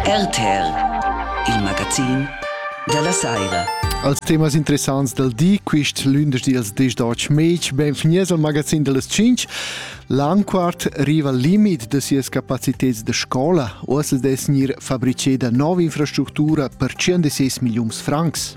RTL, il magazin dalla Saira. Als temas interessants del di, quist lündeschdi als dis Deutsch Match, benvenies al magazin dellas 5. L'anquart riva al limit de sias capaciteds de scola, uossa es gnir fabriceda nova infrastructura per 106 milliuns francs.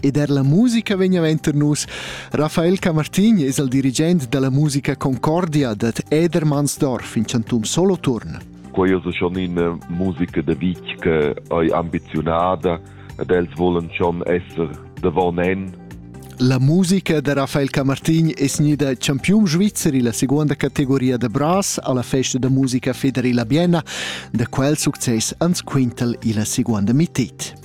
ed er la musica vegneva enter nus. Rafael Camartin es il dirigent della musica Concordia dad Edermannsdorf in Chantum Soloturn. Quei es schon ina musica de vitg che ei ambizionada ed els volen schon esser davon en. La musica de Rafael Camartin es gnida champiun svizeri la seconda categoria de brass alla festa de musica federila Bienna, da quel success ans quintel ila seconda mittit.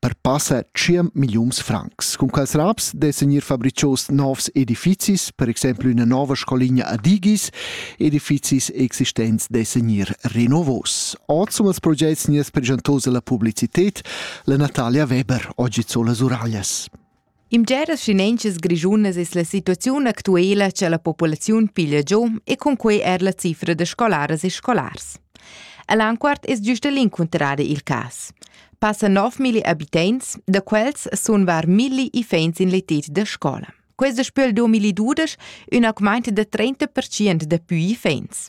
per passa tschient milliuns francs. Cun quels raps dessan ir fabricios novs edifizis, per exemplu üna nova scoligna a Digis, edifizis existents dessan ir renovos. Ord sum als progets nias pregentos alla publicitet la Natalia Weber, oggi sola Suraglias. In bgeras schinentschas grischunas es la situaziun actuela cha la populaziun piglia giò e cun quei er la cifra da scolaras e scolars. A Lanquart es giusta l'incuntrada il cas. Passa 9.000 abitants, da quels sun var milli iffaints in l'etet da scola. Questa spöl 2012 üna augmaint da 30% da pü iffaints.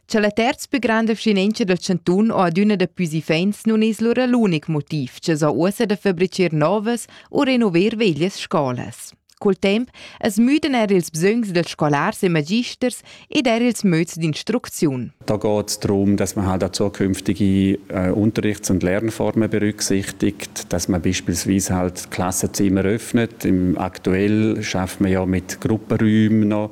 Cha la terz pü granda vschinentscha dal chantun o adüna daplü iffaints nun es lura l'unic motiv cha s'ha uossa da fabbricher novas u renover veglias scolas. Col temp as müdan eir ils bsögns dels scolars e magisters ed eir ils möds d'instrucziun. Da geht es darum, dass man halt auch zukünftige äh, Unterrichts- und Lernformen berücksichtigt, dass man beispielsweise halt Klassenzimmer öffnet. Im aktuell schafft man ja mit Gruppenräumen noch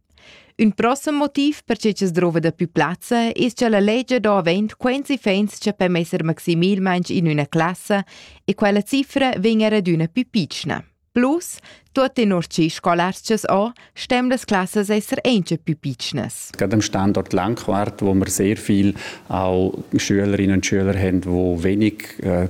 Ün prossem motiv per che chi's drouva dapü plazza es cha la legia do avaunt quints iffaints cha per messer maximalmaing in üna classa e quella cifra vegn er adüna pü pitschna. Plus, tuot tenor chi scolarchas ho, stem las classas esser auncha pü pitschnas. Gerade am Standort Langquart, wo wir sehr viel auch Schülerinnen und Schüler haben, die wenig äh,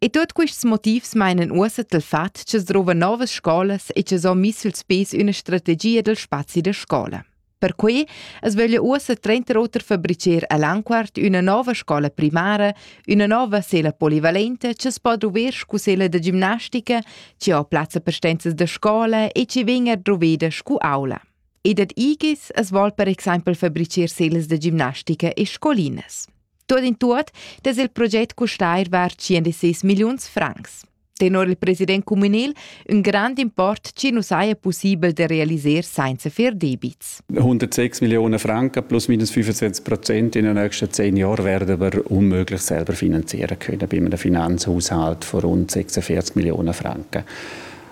E tuot quists motivs mainan uossa dal fat cha's drouva nouvas scolas e cha's ho miss suls pes üna strategia dal spazi da scola. Perquai as vöglia uossa trenter oter fabricer a Lanquart üna nova scola primara, üna nova sela polivalenta cha's po druver scu sela da gimnastica, chi ho plazza per stenzas da scola e chi vegn er druveda scu aula. E dad igis as vol per exaimpel fabricer selas da gimnastica e scolinas. Tuot in tuot dess il proget custar var 106 milliuns francs. Tenor il president communal un grand import ci nu saja possibel de realiser senza fer debits. 106 Millionen Franken plus minus 25 Prozent in den nächsten zehn Jahren werden wir unmöglich selber finanzieren können bei einem Finanzhaushalt von rund 46 Millionen Franken.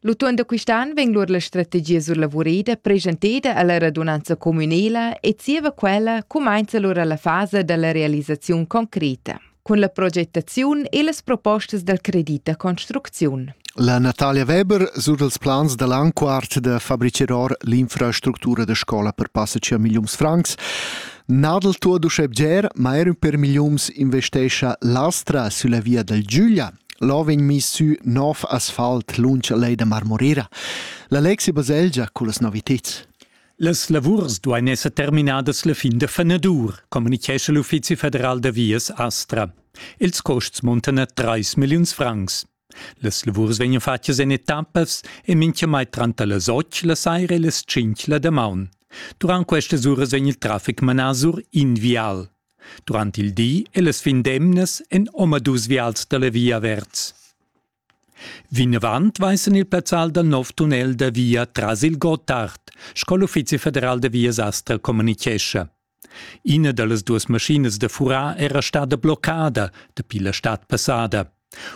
L'utuon da quist'an vegn lur la strategia surlavurida presenteda alla radunanza communela e zieva quella cumainza lur alla fasa dalla realisaziun concreta cun la progettaziun e las propostas dal credit da construcziun. La Natalia Weber sur dals plans da l'an quart da fabriceror l'infrastructura da scola per passa 5 milions francs Nadel tuo duschebger, ma er per miliums investescha l'Astra sulla via dal Giulia. Là vegn mis sü nov asfalt lunsch a lej da Marmorera. La Lexi-Baselgia cullas noviteds. Las lavurs duain esser terminadas la fin da fenadur, communichescha l'Uffizi federal da vias Astra. Els costs muntan a 3 milliuns francs. Las lavurs vegnan fatgas en etappas e minchamai tranter las 8 la saira e las 5 la damaun. Durant questas uras vegn il traffic manà sur invial. Durant il di e las fin d'emnas èn omadus vials da la via averts. Vinavant vaisan il plazzal dal nov tunnel da via tras il Gottard, sco l'Uffizi federal da vias Astra communitgescha. Ina da las duas maschinas da furar era stada bloccada dapi la stad passada.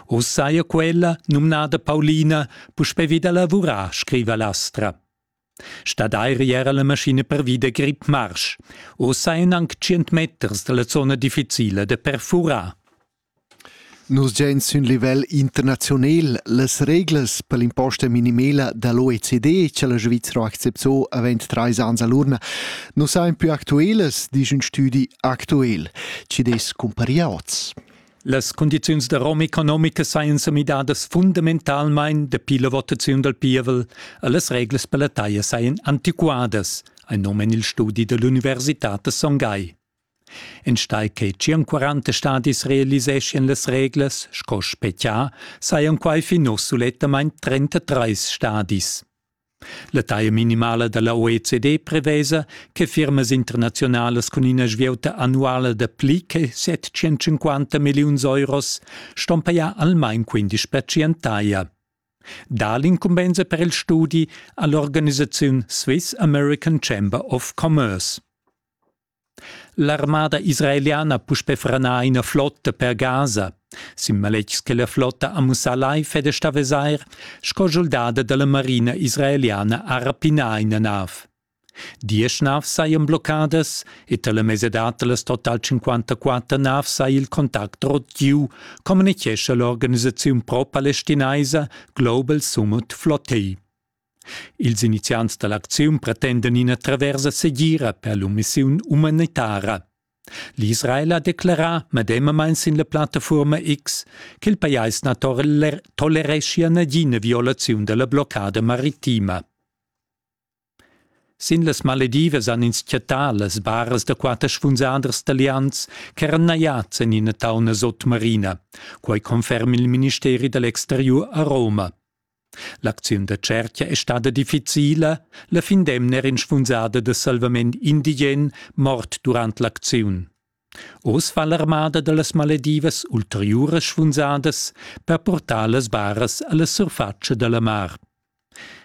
Oz saja quella, numnada Paulina, puspè vida lavurar, scriva l'Astra. Stadair era la maschina pervi da grip-marsch. Ussa èn anc tschient meters da la zona difficila da perfurar. Nus giain sün livel internaziunel las reglas per l'imposta minimela da l'OECD che la Svizzera ha acceptò avant trais ans a l'urna nu sajan più actuelas, disch ün stüdi actuel, chi'd es cumpari a hoz. Las cundiziuns da rom economica sajan sa midadas fundamentalmain dapi la votaziun dal pievel e las reglas per la taglia sajan antiquadas, ein nom en il studi dell'Università da Son Gagl. Enstai che 40 stadis realiseschian las reglas, sco Spetgia, sajan quai fin uss sulettamain 33 stadis. La taglia minimala da la OECD prevesa che firmas internaziunalas cun ina svieuta annuala da pli che 750 milliuns euros ston pajar almain 15 per cent taglia. Da l'incumbensa per il studi ha l'organisaziun Swiss American Chamber of Commerce. L'armada israeliana ha puspè franà ina flotta per Gaza, sin maletgs che la flotta ha mussà live ed è stà vesair sco schuldada da la marina israeliana ha rapinà ina nav. Diesch navs sajan bloccadas e tar la mesadad da las total 54 navs saja il contact rot giu, communitgescha l'organisaziun pro-palestinaisa Global Summit Flottei. Ils iniziants da l'acziun pretendan ina traversa segira per l'emissiun umanitara. L'Israel ha declerà medemamain sin la plattafuorma X ch'il pajais na tolereschia nagina violaziun da la bloccada maritima. Sin las Maledivas han ins chattà las baras da quatter spunsaders talians ch'eran najads en ina tauna sotmarina. Quai conferma il ministeri da l'exteriur a Roma. L'acziun da tschertga è stada difficila, la fin d'emna era inspunzada da salvament indigen mort durant l'acziun. Oz fa l'armada da las maledivas ulteriuras sfunsadas per portar las baras a la surfatscha da la mar.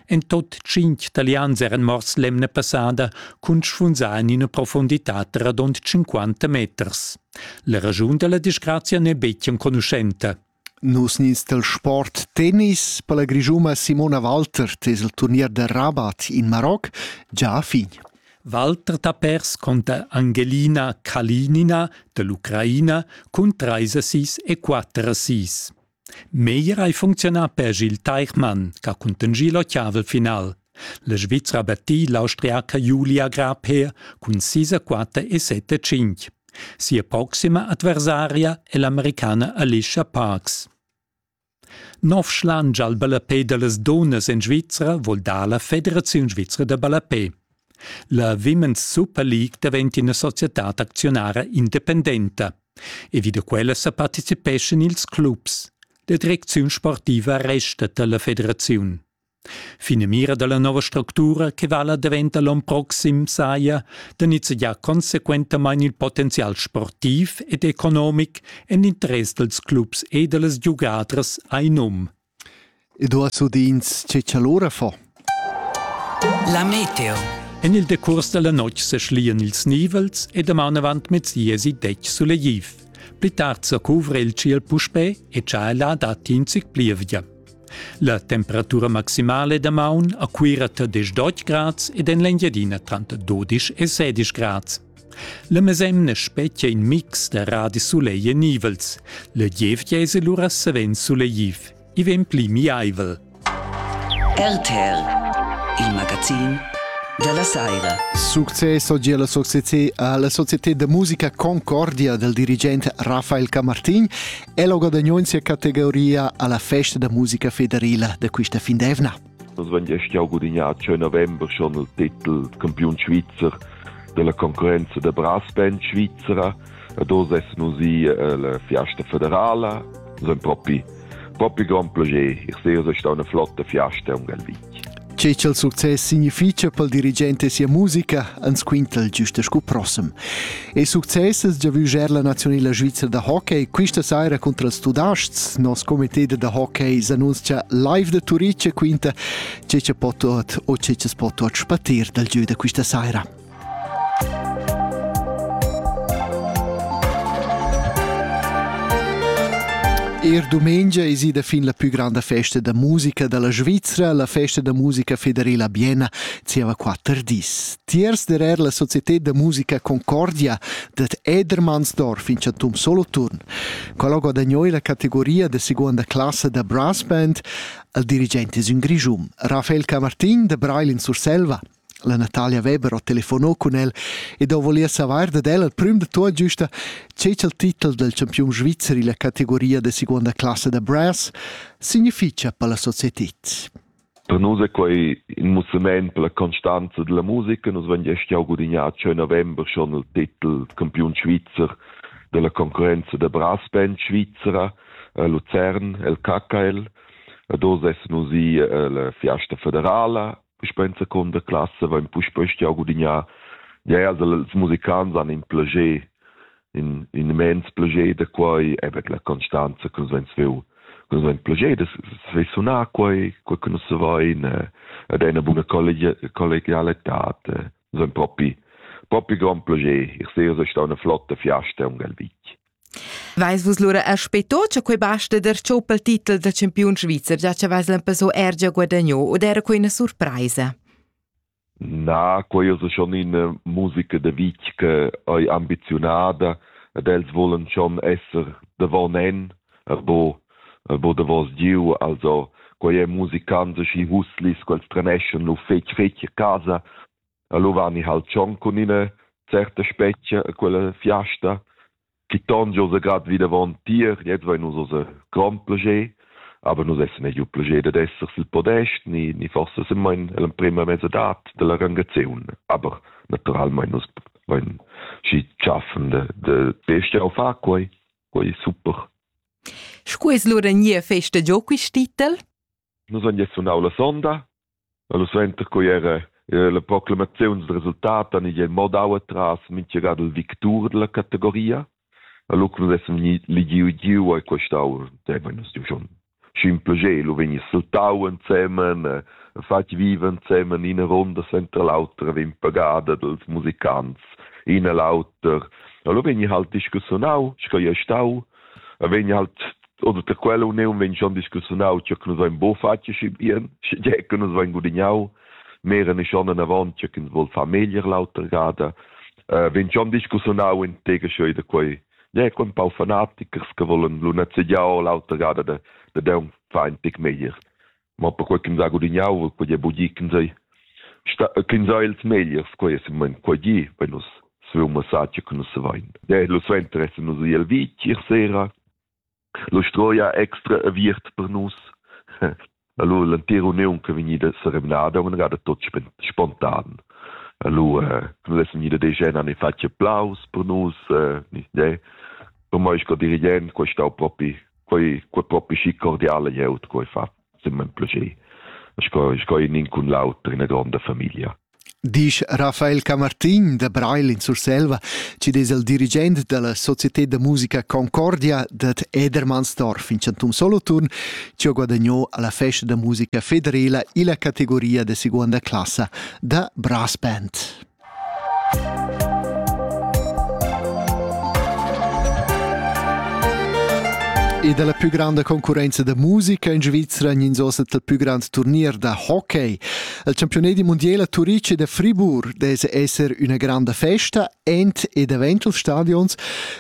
En tot tschintg talians eran morts l'emna passada cun sfunzar en ina profondità radund 50 meters. La raschun da la disgrazia n'è betg enconuschenta. Nus nins dal sport tennis per la Grischuna Simona Walter tes il turnier da Rabat in Maroc già a fin. Walter da pers conta Angelina Kalinina dell'Ucraina cun 3 assis e 4 assis. Meglier hai funcziunà per Gil Teichmann, che ha cuntengi l'ottavel final. La Svizra battì l'austriaca Julia Grabher cun sis a quatter e set a cinc. Sia proxima adversaria è l'americana Alicia Parks. Novschland al ballapé da las dunnas en Svizra vul dar la Federaziun svizra da ballapé. La Women's Super League daventa ina societad acziunara independenta e vi da quella sa participeschan ils clubs. La direcziun sportiva resta da la federaziun. Finamira dalla nova structura che vala daventa l'on proxim saja da nizzegiar consequentamain il potenzial sportiv ed economic en interess dals clubs e da las giugadras a in um. Eduard Sudins, che allora fa? La meteo. En il decurs dalla notg seschlian ils nivels e daman avant mezziesi detg suleiv. Pli tard sa cuvra il ciel puspè e cha la datti in zic plievgia. La temperatura maximale da maun a Cuira tar 10 grads ed en l'Engiadina tranter 12 e 16 grads. La mesemna spetgia in mix da radisoleil e nivels. La gievgia es lura savens suleiv. I vegn pli miaivel. RTL, il magazin della Saira. Successo gie la società alla società de musica Concordia del dirigente Rafael Camartin El ho guadagno in sia categoria alla festa da musica federila da quista fin d'eivna. Nus vain gest jau gudignà a 6 november schon il titel campiun svizzer della concorrenza da brass band Svizzera ed oz essan nus i alla fiasta federala. Nus haben propi propi grand plascher. Ich sehe, es ist eine flotte Fiesta um Galvin. Tge ch'el success significha pel dirigent e sia musica ans quintel güsta scu prossem. E success es già vujer la nazionela svizra da hockey. Quista saira contra els Tudasts, nos comité da hockey s'annunzcha live da Turic e quinta tge cha po tuot o tge cha's po tuot spatir dal giö da quista saira. Er dumengia es ida fin la pü granda festa da musica da la Svizra, la festa da musica federela Biena, zieva quatter dis. Tiers derer la Società da musica Concordia dat Edermannsdorf in chantum Soloturn. Quello guadagnò la categoria da seconda classe da brass band al dirigente es un Grischum. Rafael Camartin da Brail in Surselva La Natalia Weber ho telefonò cun el ed ho voliu savair dad el al prüm da tuot giusta che cha'l titel del champiun svizzer illa categoria da seguonda classa da brass significha per la societed. Per nus è quai in mussament per la constanza della musica. Nus vegn gest jau gudignat schon november schon il titel campiun svizzer della concorrenza da brassband svizzera a Luzern, el KKL. Ed oz essen nus i alla Fiesta Federala puspei in secunda classa vain puspei stiau gudignar. Ja, also els musicants han in plager, in, in immens plager da quei, eben la constanza che nus vens veu, che nus vens plager da svei sunar quei, quei che nus vain, ed è una buona collegialità, nus vens propi, propi gran plager, ich sehe, es è stau una flotta fiasta un galvich. Veis vus lura aspetto che quei basta der tscheu pel titel da campiun svizzer, già che veis l'empezzo er già guadagno od era quei una surpresa? Na, quei es schon ina musica de vitg che ei ambizionada ed els volen schon esser davon en, erbo erbo davos giu, also quei è musicants schi huslis, quels treneschan lu fetg fetg a casa Allo vani hal tschon cun ina certa specia a quella fiasta chi ton giò sa grad vi davon tier, jetzt vain nus unser grond plascher, aber nus essan eir giu plascher dad esser sül podest, ni, ni forsa sun main l'emprema mezzadad dalla rangaziun, aber naturalmein nus vain schi tschaffen da, da d'estiar a far quai, quai è super. Scu es lura gnir festa giò quist titel? Nus han sunau la sonda, Lu suenter quei era la proclamaziun dil resultat han igl mo dau atras mintgaga dil victur dalla categoria. E lu cun essan vegni ligiu giu ei quei stau dein nus schon sch'in plascher lu vegni saltau ensemen e fatg viva ensemen ina ronda sentra l'autra vegn pagada dals musicants ina l'auter e lu vegni halt discussionau sco ei stau e vegni halt oder der quella union wenn schon discussiunau che nous vain bo fatg schi bien schi je que nous vain gudignau meren is schon eine Wand, che ins wohl Familie lauter gada. Uh, wenn schon discussiunau in tega scheu da quei, ja, quei ein paar Fanatiker, che wollen lu net se ja lauter gada de, de deun fein tic meier. ma perquei ch'ins ha gudignau quei è bugi ch'ins ei ch'ins ha ils megliers quei è semment quei gi wenn nus savein massagia che nus savein de lu suenter essen nus iel vitg ir sera lu stroia extra aviert per nus Allora l'entira uniun che vegnida sereminada una gada tot spontan. Allora non lesson ida de gena ne faccia applaus per nus, eh, ne, per mai sco dirigent questo propi quei quei propi schi cordiale glieud quei fa simmen plascher sco sco in in cun l'auter ina gronda famiglia Disch Rafael Camartin da Breil in Surselva, ci des el dirigent della Società da musica Concordia dat Edermannsdorf in Chantum Solothurn, ci ho guadagnò alla festa da musica federela illa categoria de seconda classa da brass band. E dalla più grande concorrenza da musica in Svizzera ins ossa il più grande turnier da hockey. Il campione di mondiale a Turic e da Fribourg dese esser una grande festa ent ed eventual stadions.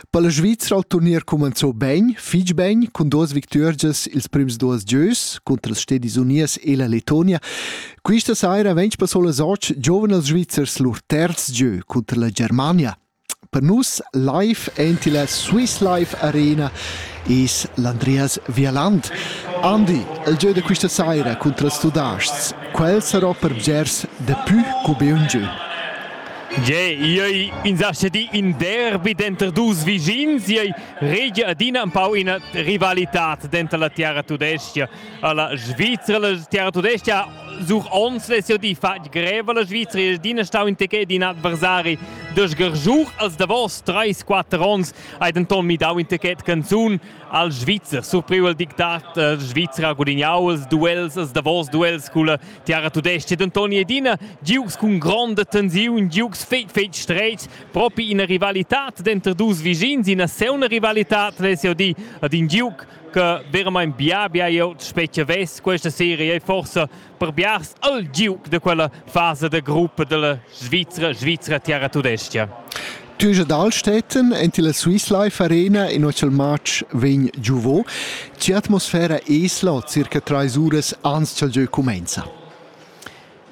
Per la Svizzera il turnier comenzò ben, fitg ben, con dos victorias ils primi dos gieus contro le Stedis Unies e la Letonia. Questa saira vegn passo las otg giovens svizzers lur terz gieu cunter la Germania. Per nus live enti la Swiss Life Arena is l'Andreas Vialand. Andi, il gieu da questa saira contro els Tudasts, quel sarà per bgers de più come un gieu. Ge, iei insaschedi in derby denter dus vischins, iei regia adina un pau ina rivalitad denter la tiara tudescia La Svizra, la terra tudesca, such ons ves'jeu di fatg greva la Svizra il din stau in tecei din adversari dos gargiur als davos 3-4 ons hai denton midau in tecet canzun al Svizzer surpriu el dictat eh, Svizra gudignau els duels els davos duels culla terra tudesca denton edina giugs cun gronda tensiun giugs fetg fetg streit propi ina rivalità denter dus vischins ina seuna rivalità ves'jeu di ad in giug che veramente bia bia io speciavess questa serie e forse per biars al giuc de quella fase de gruppo della Svizzera Svizzera Terra Tudestia. Tüge Dalstätten ent la Swiss Life Arena in ochel match vegn giuvo. Ci atmosfera esla circa 3 uras ans chal gieu comenza.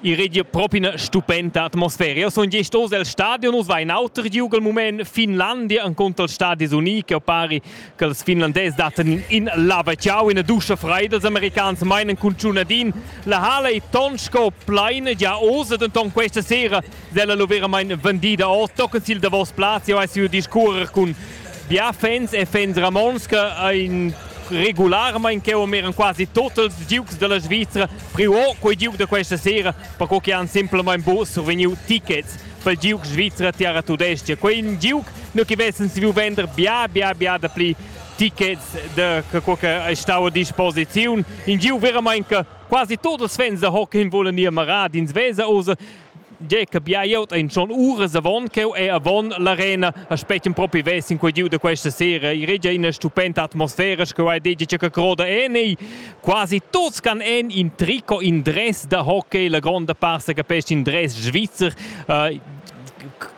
I regia propi ina stupenta atmosfera. Io sun gest oz el stadion, us va in auter giug al mument Finlandia encunter il Stadis Uni, che pari che els finlandés datten in, in laveciau, ina duscha freida, els americans meinen cun tschunadin. La hala è ton sco pleina già oz, denton questa sera Sella lo veramain vendida ord tochen sil davos plaz. Jau hai siu discurrer cun bia fans e fans Ramons che ein regularmain che eran quasi total Dukes della Svizzera priu quei Duke da questa sera perché che han semplicemente bo survegniu tickets per Duke Svizzera Terra Tudestia. Quei in Duke nu che vessen saviu vender bia bia bia da pli tickets de quello che stava a disposizione. In Giu veramente che quasi tutti i fans da hockey volen ir marad in Svesa, also Tge che bia glieud ein schon uras avon cheu e avon l'arena aspecten propi vess in quei giu da questa sera. I regia ina stupenda atmosfera che hai detto che croda en e quasi tuts can en in tricot in dress da hockey, la gronda parte capisce in dress svizzer. Uh,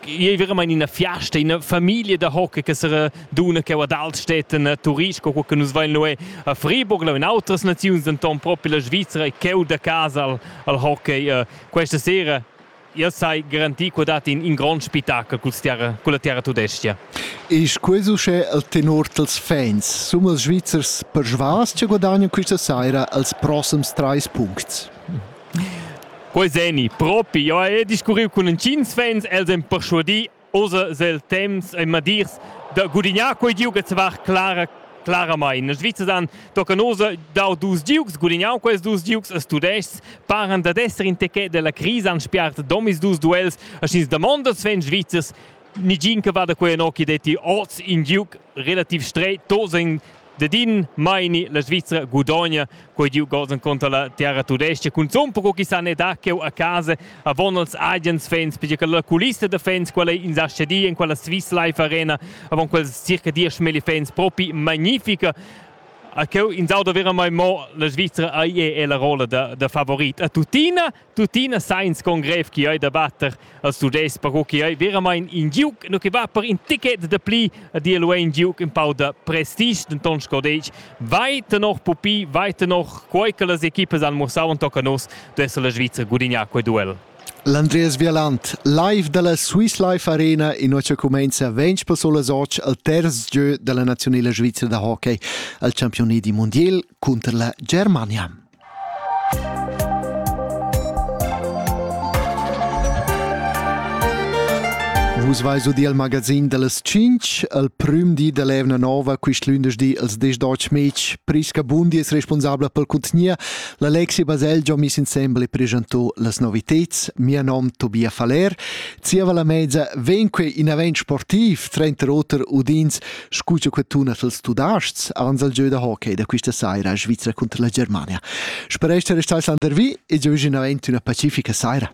è veramente in una fiesta, in una famiglia da hockey che sarà duna che ad altstätten eh, turisti, quello che nus vein noi a Friburg, in altre nazioni, denton proprio la Svizzera e cheu da casa al, al hockey. Eh, Questa sera io sai garantir che dat in, in grond spettacol cul terra, culla terra tudestia. Ist ques uschè il tenor dels fans? Sono ils Svizzers persvas che guadagnano questa sera els prossimi trais punti? Quei seni, propi, io ho discurriu cun intgins fans, els han persuadì Osa sil temps ein madirs da gudignar quei giug e var clara claramain. La Svizra dan tocca nosa dau dus giugs, gudignaun quels dus giugs a Studeschs, paran dad esser in techet della crisa han spiart domis dus duels a schins damondas Sven Svizzers Nigin che va da quei anocchi detti oz in giug relativ streit, tosa in da din maini la Svizzera gudogna quei giu gols enconter la terra tudesca cun zon però chi san e da cheu a casa avon als agens fans perché che la culista da fans quella in Sachedi in quella Swiss Life Arena avon quels circa 10 mili fans propi magnifica a cheu in sauda vera mai mo la Svizzera ai è la rolla da, da favorit a tutina Tuttina sa ins con grev che ei da batter als Tudès, però che ei veramain in giug, no che va per in ticket de pli, di el ein giug in pau da prestige, denton sco detg, vai tenor pupi, vai tenor quei che las equipas han mussau en tocca nos, duesse la Svizra gudignar quei duel. L'Andreas Vialant, live dalla Swiss Life Arena, innoce cumenza ventg personas oggi al terz gieu della nazionale Svizzera da hockey, al campione di mondial contro la Germania. Vus vais ud il magazin dellas Cinc, al prüm di dell'evna nova, quist lündeschdi als desch deutsch Mädch, Priska Bundi es responsabla pel contgnier, l'Alexi Baselgia mis insembel e presentò las noviteds, mia nom Tobia Faller, zieva la mezza venque in event sportiv, trenter oter udins Scu cha que tuna als Tudaschs ans al gieu da hockey da quista saira a Svizra cunter la Germania. Sperest da restar sandervi e giovigina aint üna pacifica saira.